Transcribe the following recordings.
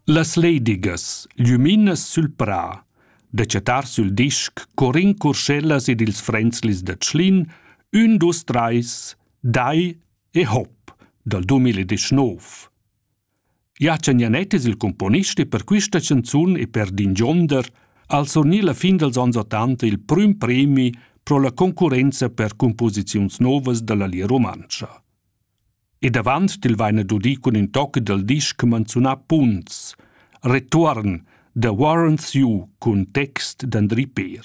Las ledigas, glüminas sül prà, da chattar sül disc co rincorschellas ed ils frenzlis da Tschlin, ün, dus, trais, dai e hop dal 2019. Jachen Janett es il cumponist e per quista chanzun e per d'ingionder al surgnì la fin dals ans ottanta il prüm premi pro la concurrenza per cumposiziuns novas da la Lia Rumantscha. ed avant il vaina dudi cun ün toc dal disch manzunà Punts, Retuorn, The Warrants You cun text d'Andri Peer.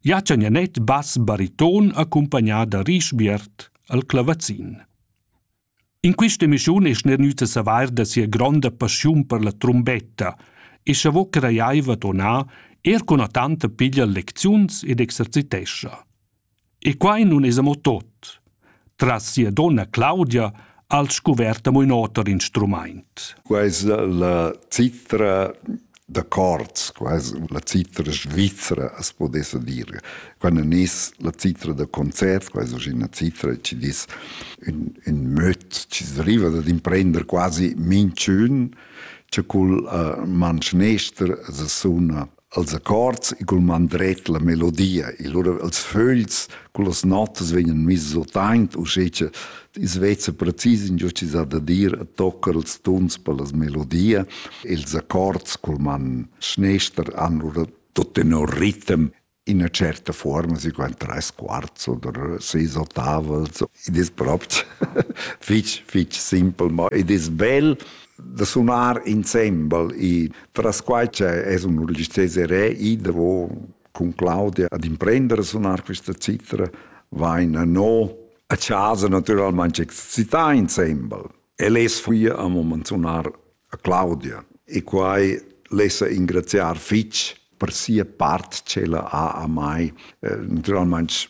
Jaccia Nianet bass bariton accompagnà da Rischbiert al clavazin. In questa emissione es nernüta savair da sia gronda passiun per la trombetta e cha vo crajaiva tonà er cun tanta piglia lecziuns ed exercitescha. E quai nun es amo tot. Tras sia donna Claudia ha'l scuvert amo ün oter instrumaint. Quai es la citra da cords, quasi la citra svizra, as podessa dir. Quando es la citra da concert, quasi oggi una citra ci dis ün, ün möt, ci arriva dad imprender quasi minchün, cha cul uh, manschnester as suna als accords e cul man dret la melodia e lura els fögls cun las notas vegnan misses otaint uschè cha i's vezza precis ingio chi s'ha da dir e toccar ils tuns per las melodia e ils accords cul man schnester han lura tut tenor ritem in üna certa forma, si qua tres quarts oder seis ottavels. Id es propi fich, fich simpel, ma id es bel da sunar insembel e tras quai che es un registrés erè i davo cun Claudia ad imprendere a sunar questa citra vaina no a casa naturalmente excità insembel e les fui a moment sunar a Claudia e quai lessa ingraziar fitch per sia part ch'ella ha a mai eh, naturalmente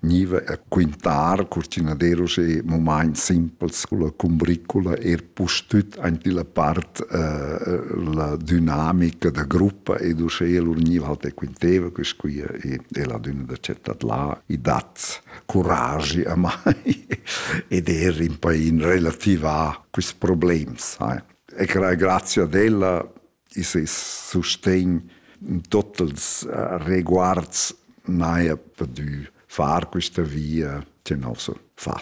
Gniva a quintar cur ch'inaderus e momaints simpels culla cumbricula eir pustüt aint illa part la dünamica da gruppa ed uschea lur gniva halt e quinteva, quist qui è la dünna da città là. I dat curagi amai ed eir rimpai in relativà quists problems, sai. E grazie ad ella i ses sustegn totes uh, reguards n'haja pudü far quista via tenor so fat.